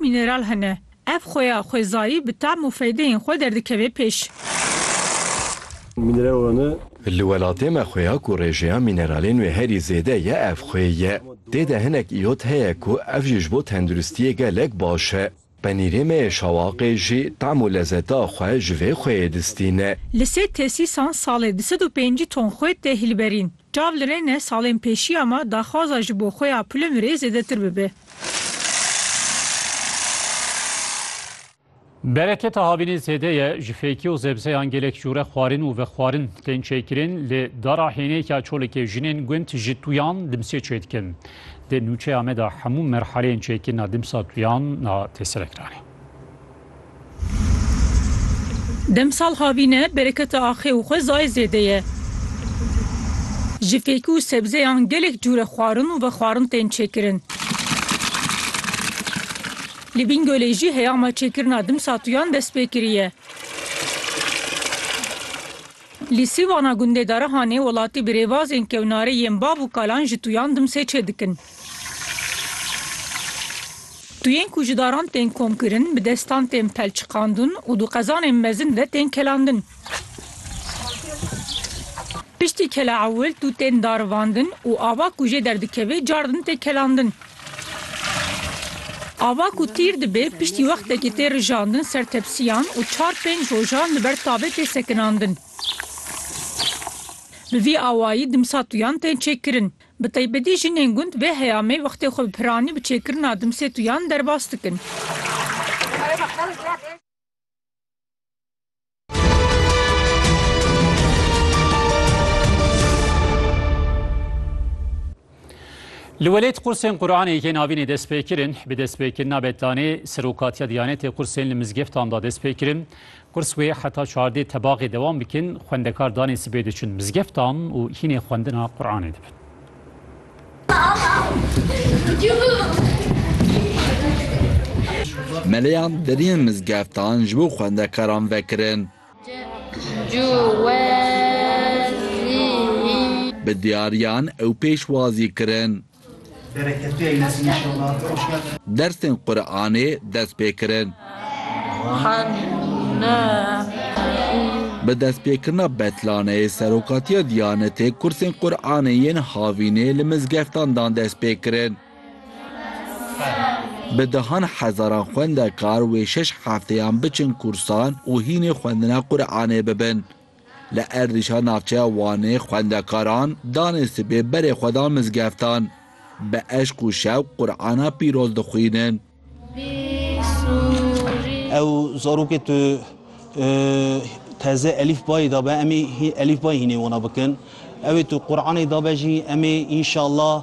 Mîneral hene. Ev xuya xwezayî bi tam û feydeyên xwe derdikeve pêş. Mîneral hene. Li welatê me xuya ku rêjeya mîneralên wê herî zêde ye ev xwe ye. Tê de hinek îyot heye ku ev jî ji bo tenduristiyê gelek baş e. Penîrê me yê şawaqê jî tam û lezeta xwe ji vê xweyê distîne. Li sê tesîsan salê di sed û pêncî ton xwe tê hilberîn. Çav li rê ne salên pêşiya me daxwaza ji bo xwe ya pilim rê zêdetir bibe. Bereketa havînê zêde ye ji fêkî û zebzeyan gelek jûre xwarin û vexwarin tên çêkirin lê dara hênêka çolekê jinên gund ji tuyan dimsê çêdikin. Di nûçeya me de hemû merhaleyên çêkirina dimsa tuyan na têselekiranê. Demsal havîne bereketa axê û xwezayê zêde ye. Ji fêkî û sebzeyan gelek cûre xwarin û vexwarin tên çêkirin. Li Bingölê jî heyama çêkirina dimsatuyan dest pê kiriye. Li sîvana gundê Darihanê welatî bi rêbazên kewnarê yên bav û kalan ji tuyan dimsê çêdikin. Tuyên ku ji daran tên komkirin, bi destan tên pelçiqandun û du qezanên mezin de tên kelandin. Piştî kela ewil tu tên darivandin û ava ku jê derdikevê car din tê kelandin. Ava ku tîr dibe piştî wextekî tê rijandin ser tepsiyan û çar pênc rojan li ber tavê tê sekinandin. Bi vî awayî dimsa tuyan tên çêkirin. Bi taybetî jinên gund vê heyamê wextê xwe bi piranî bi çêkirina dimsê tuyan derbas dikin. Li welêt qursên Quranê yên avînê dest pê kirin, bi destpêkirina betanê Serokatiya Diyanetê qursên li mizgeftan de dest pê kirin. Qurs wê heta çardê tebaxê dewam bikin, xwendekar danê sibê diçin mizgeftan û hînê xwendina Quranê dibin. Meleyan deriyên mizgeftan ji bo xwendekaran vekirin. Bi diyariyan ew pêşwazî kirin. Dersên Quranê dest pê kirin. Bi destpêkirina betlaneyê Serokatiya Diyanetê kursên Quranê yên havînê li mizgeftan dan destpêkirin. Bi dehan hezaran xwendekar wê şeş hefteyan biçin kursan û hînê xwendina Quranê bibin. Li erdîşa navçeya Wanê xwendekaran danê sibê berê xwe da mizgeftan. Bi eşq û şewq Qur'ana pîroz dixwînin. Ew zarokê tu teze elîf bayê dabe em ê elîf bayê hînê wana bikin. Ewê tu Qur'anê dabe jî em ê înşallah.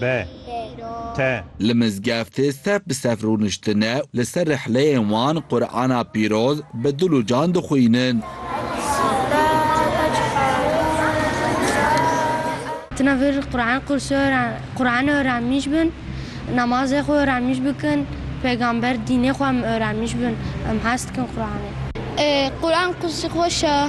Be. Te. Li mizgeftê sef bi sef rûniştine û li ser rihleyên wan Qur'ana pîroz bi dil û can dixwînin. Tune vir Qur'an qûrsê Qur'an öğrenmiş bin, namazê xwe öğrenmiş bikin, peygamber dînê xwe em öğrenmiş bin, em hez dikin Qur'anê. Qur'an qûrsê xweş e.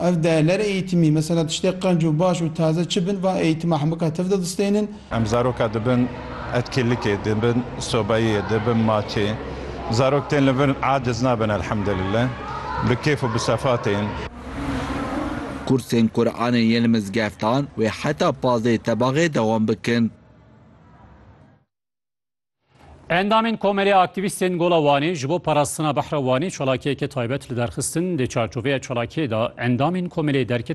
Ev değler eğitimî, mesela tiştê qenc û baş û taze çi bin, van eğitima hemika tev de distênin. Em zaroka dibin etkîlikê, dibin sobayiyê, dibin maçê. Zarok tên li vir aciz nabin elhemdulillah, bi kêf û bi sefa tên. Kursên Quranê yên li mizgeftan wê heta pazdeh tebaxê dewam bikin. Endamên Komelê aktîvîstên Gola Wanê ji bo parastina behra Wanê çalakiyeke taybet li derxistin di çarçoveya çalakiyê de endamên Komelê derket